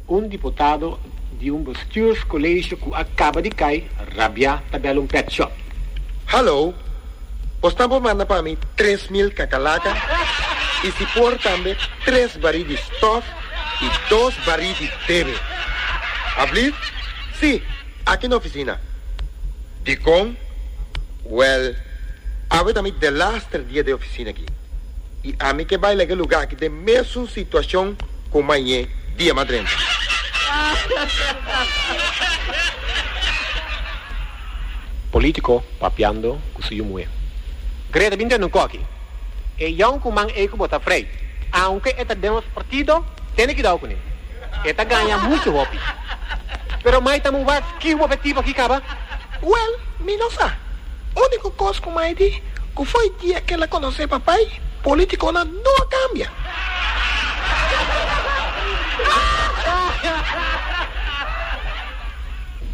Un diputado di un bestürscollegio cu a caba di cay rabia ta bel un pet shop. Hallo! Bos tambo manda pa mi tres mil cacalaca y si por tambe tres bari di stof y dos bari di bebe. Alblieft? Si! Aki na ofisina. Dikon? Wèl, awe ta mi delaster dia den ofisina aki, i ami ke bai laga e lugá aki den mesun situashon ku mañé dia mas drenta. Polítiko papiando ku su yu muhé. Greta bin den nonkó aki. E yon kuman ei ku bo ta afrei, aunke e ta den nos partido, tene kidau kuné. E ta gaña muchu hopi. Pero mai ta muba ki un obhektivo aki kaba? Wèl, mi no sa. Úniko kos ku mai di ku foi dia ku el a konosé Papai, pólitikonan no a kambia.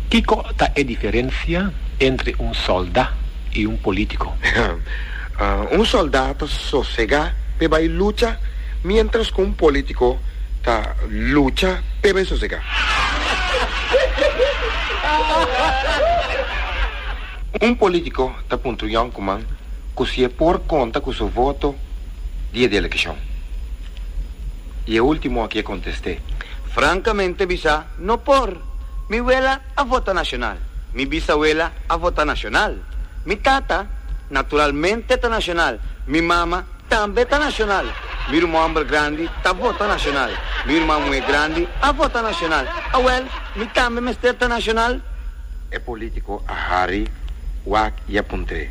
Kico ta e diferencia entre un solda y un politico? Un solda ta sosega pe bay lucha mientras cu un politico ta lucha pe bay sosega. Un politico ta puntra Jan Kuman cu si e por conta cu su voto dia di eleccion. Y e ultimo aki e conteste. Francamente bisa. No por. Mi wela a vota nashonal. Mi bisawela a vota nashonal. Mi tata, naturalmente ta nashonal. Mi mama tambe ta nashonal. Mi ruman homber grandi ta vota nashonal. Mi ruman muhe grandi a vota nashonal. Awel, mi tambe mester ta nashonal? E politico a hari wak y a puntre.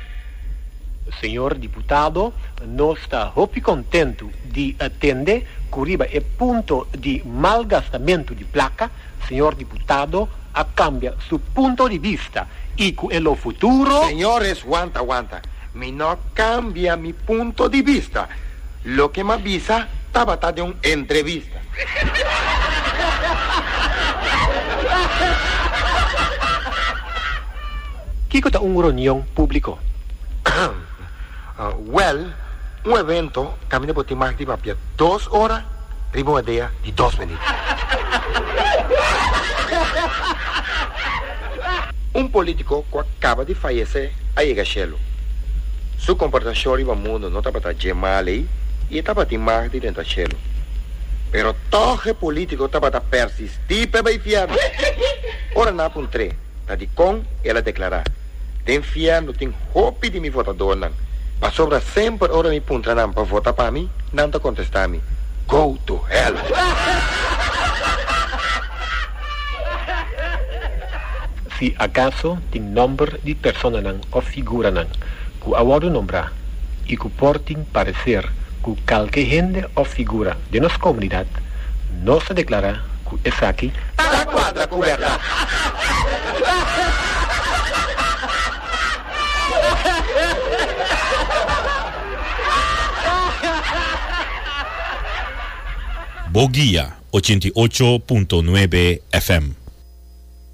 Señor Diputado, nos ta hopi contentu di atende cu riba e punto di malgastamentu di placa, Señor Diputado a cambia su punto di vista y cu e lo futuro. Señores, wanta, wanta, mi no cambia mi punto di vista. Loke m'a bisa tabata den un entrevista. Kiko ta un ronion públiko? Wèl, un evento kaminda bo tin mag di papia dos ora riba un idea di dos minüt. Un politico cu a caba di fayece a yega cielo. Su comportacion riba mundo no tabata dje mal ey y e tabatin mag di dentro cielo. Pero tog e politico tabata persisti p'e bay fierno. Ora na puntr'é ta dicon el a declara, Den fierno tin hopi di mi votadornan, pasobra semper ora mi puntra nan pa vota pa mi, nan ta contesta mi, Go to hell! Si acaso tin nomber di personanan of figuranan cu a wordo nombra y cu por tin parecer cu calke hende of figura den nos comunidad, nos ta declara cu esaki ta na cuadra cu berdad. Bo guia ochenta i ocho punto nuebe FM.